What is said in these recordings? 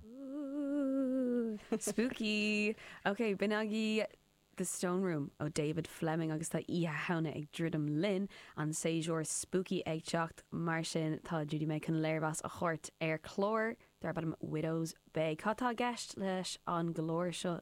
Ooh! Spooky! Ok, b'in agaibh The Stone Room ó David Fleming agus tá Oíche Shamhna ag druidim linn, an séasúr spooky ag teacht, mar sin tá Judy May chun léirmheas a thabhairt ar chlár darb ainm Widow's Bay. Cad tá i gceist leis an gclár seo?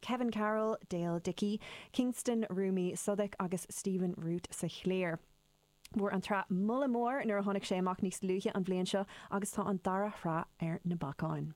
Kevin Carroll, Dale Dickey, Kingston, Rumi Sudic agus Stephen Root sa chliar. Fuair an tsraith moladh mór nuair a tháinig sé amach níos luaithe an bhliain seo agus tá an dara shraith ar na bacáin.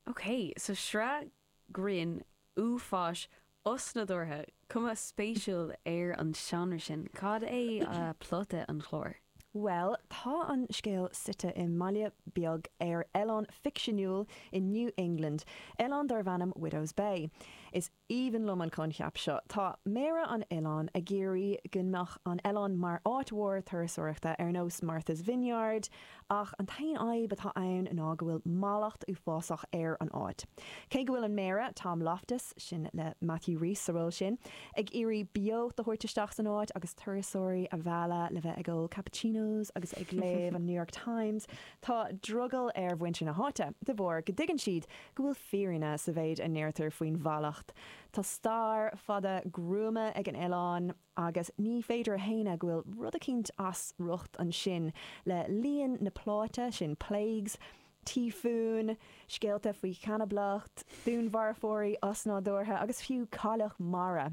OK, so sraith grinn, uafáis, osnádúrtha, cuma spéisiúil ar an seánra sin. Cad é plota an chláir? Bhuel, tá an scéal suite i mbaile beag ar oileán ficsiúnúil i New England, oileán darb ainm Widow's Bay. Is aoibhinn liom an coincheap seo. Tá méara an oileáin ag iarraidh go mbeadh an oileán mar áit mhór turasóireachta, ar nós Martha's Vineyard, ach an t-aon fhadhb atá ann ná go bhfuil mallacht uafásach ar an áit. Cé go bhfuil an méara, Tom Loftus, sin le Matthew Rhys sa ról sin, ag iarraidh beocht a thabhairt isteach san áit agus turasóirí a mhealladh le bheith ag ól cappuccinos agus ag léamh an New York Times. Tá drogall ar mhuintir na háite de bharr go dtuigeann siad go bhfuil fírinne sa mhéid a ndeirtear faoin mhallacht. Tá stair fada gruama ag an oileán agus ní féidir a shéanadh go bhfuil rud eicínt as riocht ansin le líon na bplánna sin, plagues, tíofúin, scéalta faoi chanablacht, dúnmharfóirí osnádúrtha agus fiú cailleach mara.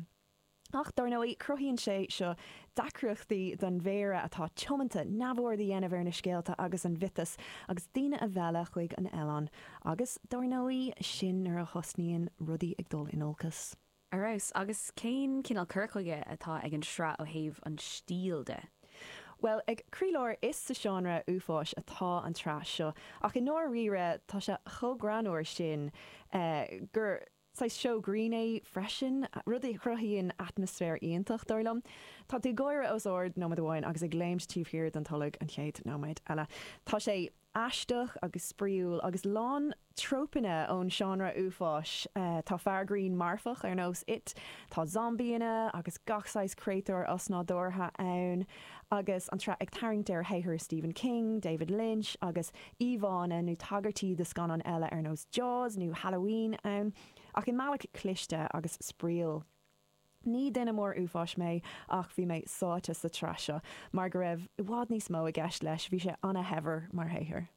Ach dár ndóigh, cruthaíonn sé seo deacrachtaí don Mhéara atá tiomanta neamhaird a dhéanamh ar na scéalta agus an mhiotais agus daoine a mhealladh chuig an oileán agus, dár ndóigh, sin nuair a thosnaíonn rudaí ag dul in olcas. Ar fheabhas. Agus cén cineál cur chuige atá ag an sraith ó thaobh an stíl de? Bhuel, ag croílár is sa seánra uafáis atá an tsraith seo ach i ndáiríre tá sé chomh greannmhar sin gur saghas seó grinn é freisin, rud a chruthaíonn atmaisféar iontach, dar liom. Tá tú ag gáire os ard nóiméad amháin agus ag léimt taobh thiar den tolg an chéad nóiméad eile. Tá sé. aisteach agus spraíúil agus lán trópanna ón seánra uafáis. Tá fear grinn marfach ar nós It, tá zombíanna agus gach saghas créatúir osnádúrtha ann, agus an tsraith ag tarraingt ar shaothair Stephen King, David Lynch agus íomhánna nó tagairtí do scannáin eile ar nós Jaws nó Halloween ann, ach i mbealach cliste agus spraíúil. Ní duine mór uafáis mé ach bhí mé sáite sa tsraith seo mar go raibh i bhfad níos mó i gceist leis, bhí sé ana-shaibhir mar shaothar.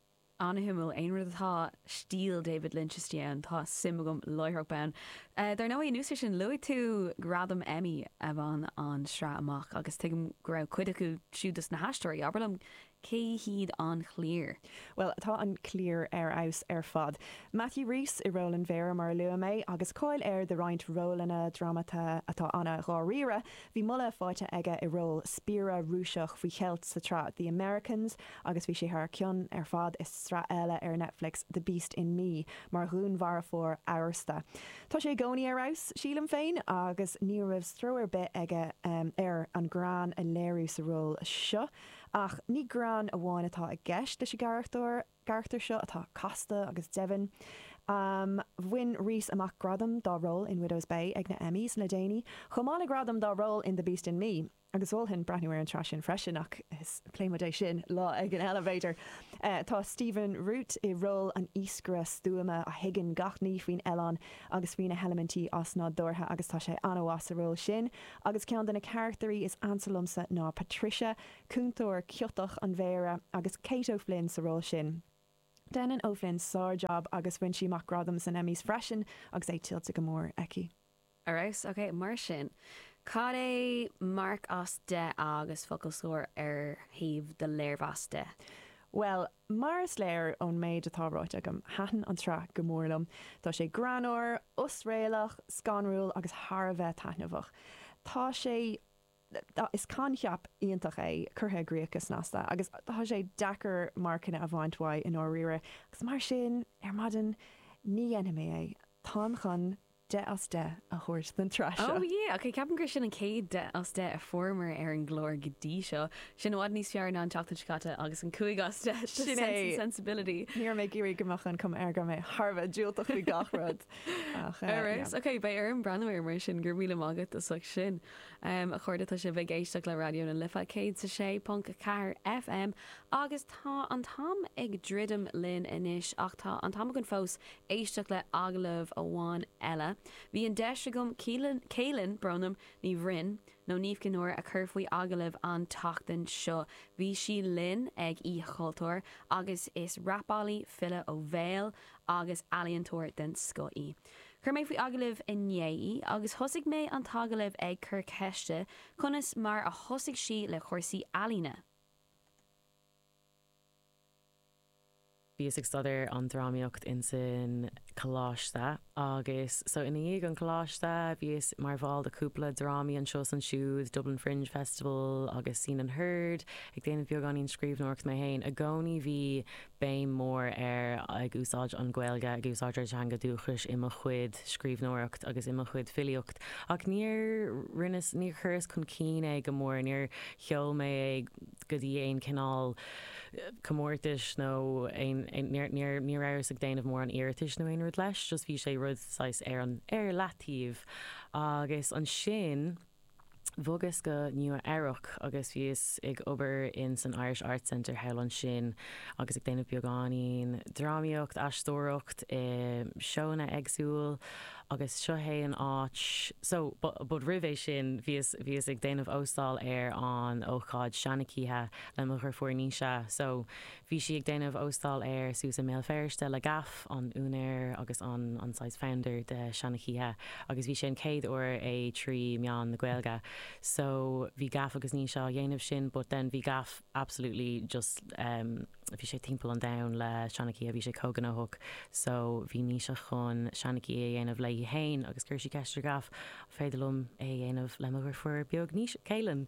Ana-shuimiúil, aon rud atá stíl David Lynch istigh ann, tá suim agam láithreach bonn. Dar ndóigh, anuas ar sin, luaigh tú gradam Emmy a bhain an tsraith amach agus tuigim go raibh cuid acu siúd dos na haisteoirí. Abair liom Cé hiad an chliar? Bhuel, tá an chliar ar fheabhas ar fad. Matthew Rhys i ról an Mhéara, mar a luaigh mé, agus cáil air de roinnt rólanna drámata atá ana-dháiríre. Bhí moladh faighte aige i ról spiaire Rúiseach faoi cheilt sa tsraith The Americans agus bhí sé thar cionn ar fad i sraith eile ar Netflix, The Beast in Me, mar dhúnmharafóir amhrasta. Tá sé i gcónaí ar fheabhas, sílim féin, agus ní raibh stró ar bith aige ar an greann a léiriú sa ról seo. Ach ní greann amháin atá i gceist leis an gcarachtar seo atá casta agus domhain. Bhain Rhys amach gradam dá ról in Widow's Bay ag na Emmys le déanaí, chomh maith le gradam dá ról in The Beast in Me, agus mholfainn breathnú ar an tsraith sin freisin ach pléifidh muid é sin lá éigin eile, b'fhéidir. Tá Stephen Root i ról an iascaire stuama a thuigeann gach ní faoin oileán agus faoi na heilimintí osnádúrtha agus tá sé an-mhaith sa ról sin agus ceann de na carachtairí is ansa liomsa ná Patricia, cúntóir ciotach an Mhéara, agus Kate O'Flynn sa ról sin. Déanann O'Flynn sár-jab agus bhain sí amach gradam sna Emmys freisin agus é tuillte go mór aici. Ar fheabhas. Ok, mar sin, cad é marc as 10 agus focal scoir ar thaobh do léirmheas de? Bhuel, Mar is léir ón méid atá ráite agam, thaitin an tsraith go mór liom. Tá sé greannmhar, osréalach, scanrúil agus thar a bheith taitneamhach. Tá sé. is coincheap iontach é, curtha i gcríoch go snasta, agus tá sé deacair marcanna a bhaint uaidh i ndáiríre, agus mar sin, ar maidin, ní dhéanfaidh mé é. Táim chun 10 as 10 a thabhairt don tsraith seo. Oh yeah! Ok, ceapaim gur sin an chéad 10 as 10 a fuaireamar ar an gclár go dtí seo. Sin i bhfad níos fearr ná an tseachtain seo caite agus an 5 as 10 do Sin é! Sense and Sensibility. Ní raibh mé ag iarraidh go mbeadh an cuma air go raibh mé thar a bheith diúltach faoi gach rud ach eh, Ar yeah. fheabhas. Ok, beidh orm breathnú air mar sin. Go raibh míle maith agat as ucht sin. Em, a chairde, tá sibh ag éisteacht le Raidió na Life 106.4 FM agus tá an t-am ag druidim linn anois ach tá an t-am againn fós éisteacht le agallamh amháin eile, bhí an deis agam Cailin, Bronwyn Ní Bhroin, nó Niamh Chinn Óir, a chur faoi agallamh an tseachtain seo. Bhí sí linn ag Oíche Chultúir agus is rapálaí, file ó bhéal agus ealaíontóir den scoth í. Chuir mé faoi agallamh í inné agus thosaigh mé an t-agallamh ag cur ceiste conas mar a thosaigh sí le cúrsaí ealaíne. Bhíos ag staidéar an drámaíocht insan coláiste agus so ina dhiaidh an coláiste bhíos mar bhall de cúpla drámaí anseo is ansiúd, Dublin Fringe Festival agus Scene and Heard, ag déanamh beagáinín scríbhneoireacht mé féin. I gcónaí bhí béim mór ar ag úsáid an Gaeilge, ag úsáid ár dteanga dúchais i mo chuid scríbhneoireacht agus i mo chuid filíocht ach níor rinneas, níor chuireas chun cinn é go mór, níor sheol mé é, go dtí aon chineál comórtais nó aon, níor, ní rabhas ag déanamh mórán iarratais nó aon rud leis, just bhí sé rud saghas ar an, ar leataobh. Agus ansin bhogas go Nua Eabhrac agus bhíos ag obair in san Irish Arts Center thall ansin agus ag déanamh beagáinín drámaíocht, aisteoireacht i seónna éagsúil. Agus seo é an áit. So, but roimh é sin bhíos, bhíos ag déanamh óstáil ar an ócáid Seanchoíche le mo dheirfiúr Naoise. So, bhí sí ag déanamh óstáil air suas i mBéal Feirste le Gaff, an úinéir agus an, an saghas founder de Seanchoíche, agus bhí sé an chéad uair é trí mheán na Gaeilge. So, bhí Gaff agus Naoise á dhéanamh sin, but then bhí Gaff absolutely just, um, bhí sé timpeall an domhain le Seanchoíche bhí sé chomh gnóthach so bhí Naoise chun Seanchoíche a dhéanamh léi féin agus chuir sí ceist ar Gaff an féidir liom é a dhéanamh le mo dheirfiúr beag Naoise, Cailin.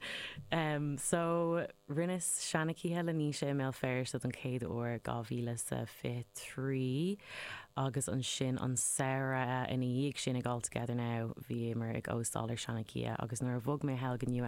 Em so rinneas Seanchoíche le Naoise i mBéal Feirste don chéad uair 2023 agus ansin an samhradh ina dhiaidh sin ag All Together Now bhíomar ag óstáil ar Seanchoíche agus nuair a bhog mé thall go Nua